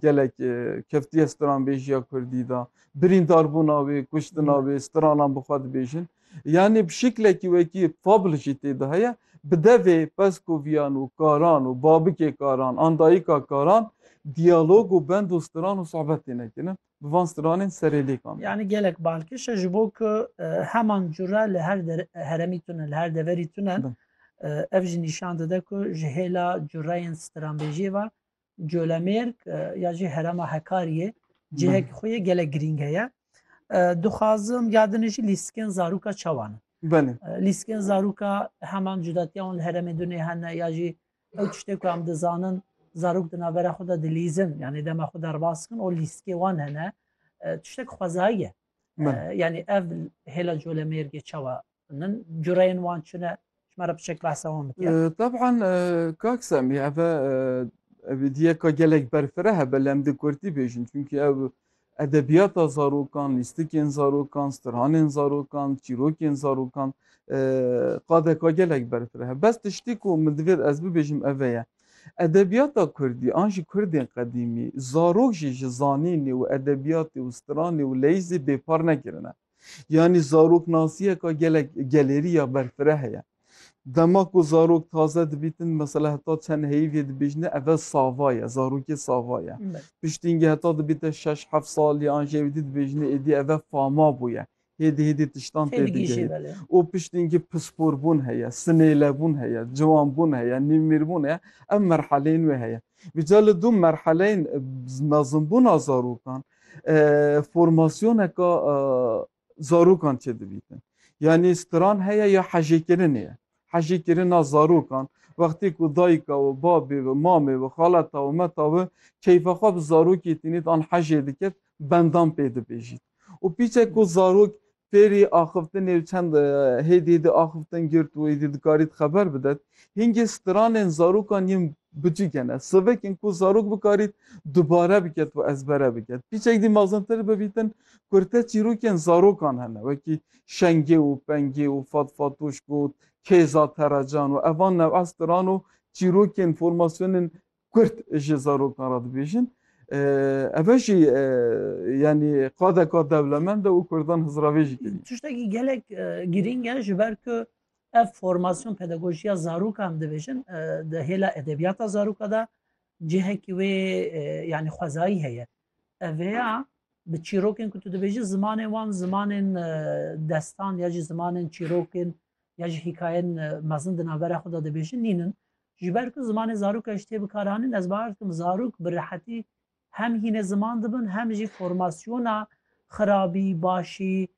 Gelek keftiye stranbêjiya Kurdî de, birîndarbûna wê, kuştina wê, stranan bi xwe dibêjin. Yanî bi şiklekî wekî fable jî tê de heye. Bi devê Peskovîyan û Karan û babikê Karan an dayika Karan diyalog û bend û stran û sohbet têne kirin bi van stranên serêlêkan. Yanî gelek balkêş e ji bo ku heman cure li her heremî tune, li her deverî tune. Ev jî nîşan dide ku ji hêla cureyên stranbêjiyê ve Colemêrg ya jî herema Hekariyê cihek xwe yê gelek girîng heye. Dixwazim yadin jî lîstikên zarûka çawan in. Belê. Lîstikên zarûka heman cudatiya wan li heremê dunê hene ya jî ew tiştê ku em dizanin zarok di navbera xwe de dilîzin yanî dema xwe derbas kin û lîstikê wan hene tiştek xwezayî ye. Yanî ev hêla colemêrgê çawa Min cureyên wan çune ji me re biçek behsa wan bike. Teb'an kak Semî ev evidiye ka gelek berfireh hebe lê em di Kurdî bêjin çünkü ev edebiyata zarokan, lîstikên zarokan, stirhanên zarokan, çîrokên zarokan qadeka gelek berfireh hebe. Bes tiştî ku min divêr ez bibêjim ev ye. Edebiyata Kurdî an jî Kurdên qedîmî zarok jî ji zanînê û edebiyatê û stiranê û leyîzê bêpar nekirine. Yanî zaroknasiyeka gelek gelêrî ya berfireh ye. Dema ku zarok taze dibîtin mesela heta çend heyîvê dibêjne eve sava ye, zarokê sava ye. Piştîngî heta dibîte şeş heft salî an jê wîdî dibêjne êdî eve fama bûye. Hêdî hêdî tiştan tê digihî. Û piştîngî pisporbûn heye, sinêlebûn heye, ciwanbûn heye, nîvmîrbûn heye. Ev merheleyên wê heye. Vîca li du merheleyên mezinbûna zarokan formasyoneka zarokan çêdibîtin. Yanî stran heye ya hejêkirinê ye. Hejêkirina zarokan wextê ku dayika we, babê we, mamê we, xaleta we, meta we keyfa xwe bi zarokê tînît an hejê dikir bendan pê dibêjît. Û pîçek ku zarok Fêrî axiftinê û çend hêdî hêdî axiftin girt û êdî dikarî di xeber bidet. Hingê stranên zarokan yên bicîk hene. Sivik in ku zarok bikarît dubare biket û ezbere biket. Pîçek dî mezintir bibîtin kurte çîrokên zarokan hene wekî Şengê û Pengê û Fat Fatoş Got, Kêza Teracan û evan new'a stran û çîrokên formasyonên Kurd ji zarokan re dibêjin. Ev jî yanî qadeka dewlemend e û Kurdan hizravê jî kirî. Tiştekî gelek girîng e ji ber ku ev formasyon pedagojiya zarokan dibêjin di hêla edebiyata zaroka da cihekî wê yanî xwezayî heye. Ev hêya bi çîrokên ku tu dibêjî zimanên wan zimanên destan ya jî zimanên çîrokên ya jî hîkayên mezin di navbera xwe da dibêjin nînin. Ji ber ku zimanê zarok e ji tê bikaranîn ez bawer dikim zarok bi rehetî hem hînê ziman dibin hem jî formasyona xirabî, başî,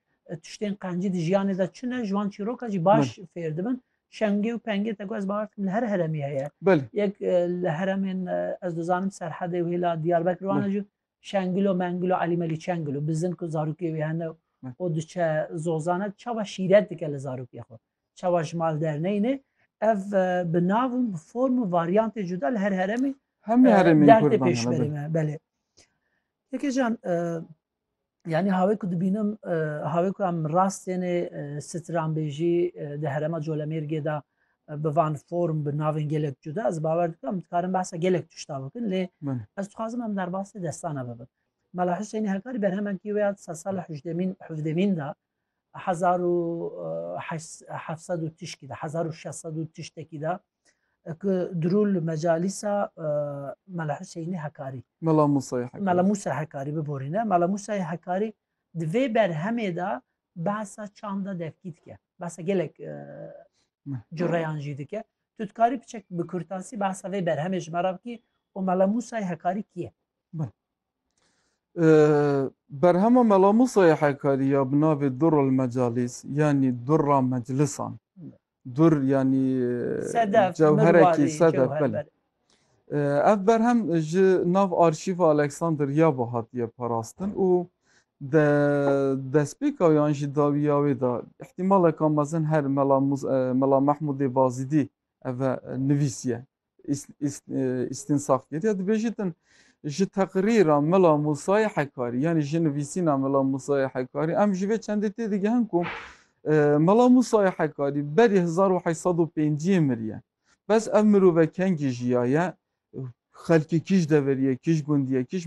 tiştên qencî di jiyanê de çi ne ji wan çîroka jî baş fêr dibin. Şengê û pengê te ku ez bawer dikim li her heremî heye. Yek li heremên ez dizanim Serhedê û hêla Diyarbekir wan e jî Şengilo mengilo Elî Melî Çengilo bizin ku zarokê wê hene û o diçe zozane çawa şîret dike li zarokê xwe çawa ji mal derneyne ev e, bi nav û bi form û varyantê cuda li her heremê hemî e, heremên derdê pêş berê me belê Yekê can e, yani havê ku dibînim havê ku em rastêne stranbêjî di herema colemêrgê de bi van form bi navên gelek cuda ez bawer dikim em dikarin behsa gelek tişta bikin lê ez dixwazim em derbasê destana bibin Mela Hüseyinî Hekarî berhemenkî wê ya di sala hûjdemîn hûvdemîn da hezar û hevsed û tişkî da hezar û şeşsed û tiştekî da ku dirûl mecalîsa Mela Hüseyinî Hekarî Mela Musa Mela Musa Hekarî biborîne Mela Musayê Hekarî di vê berhemê da Behsa çanda devkî dike. Behsa gelek cureyan jî dike. Tu dikarî biçek bi kurtasî behsa vê berhemê ji me re bikî û Mela Musayê Hekarî kî ye? Berhema Mela Musayê Hekarî ya bi navê Durul Mecalîs yanî Dura Meclisan Dur yanî Sedef, cewherekî mirwarî, sedef cewher, belê. belê. Ee, Ev berhem ji nav arşîva Alexander ya ve hatiye parastin û de destpêka wê an jî dawiya wê de îhtîmaleke mezin her Mela Muz- e, Mela Mehmûdê Bazîdî ev e nivîsiye. İstinsaf kediye dibêjî din ji teqrîra Mela Musayê Hekarî yanî ji nivîsîna Mela Musayê Hekarî em ji vê çendê tê digihin ku e, Mela Musayê Hekarî berî 1805 miriye. Bes ev mirove kengî jiyaye xelkê kîj deveriyê, kîj gundiye, kîj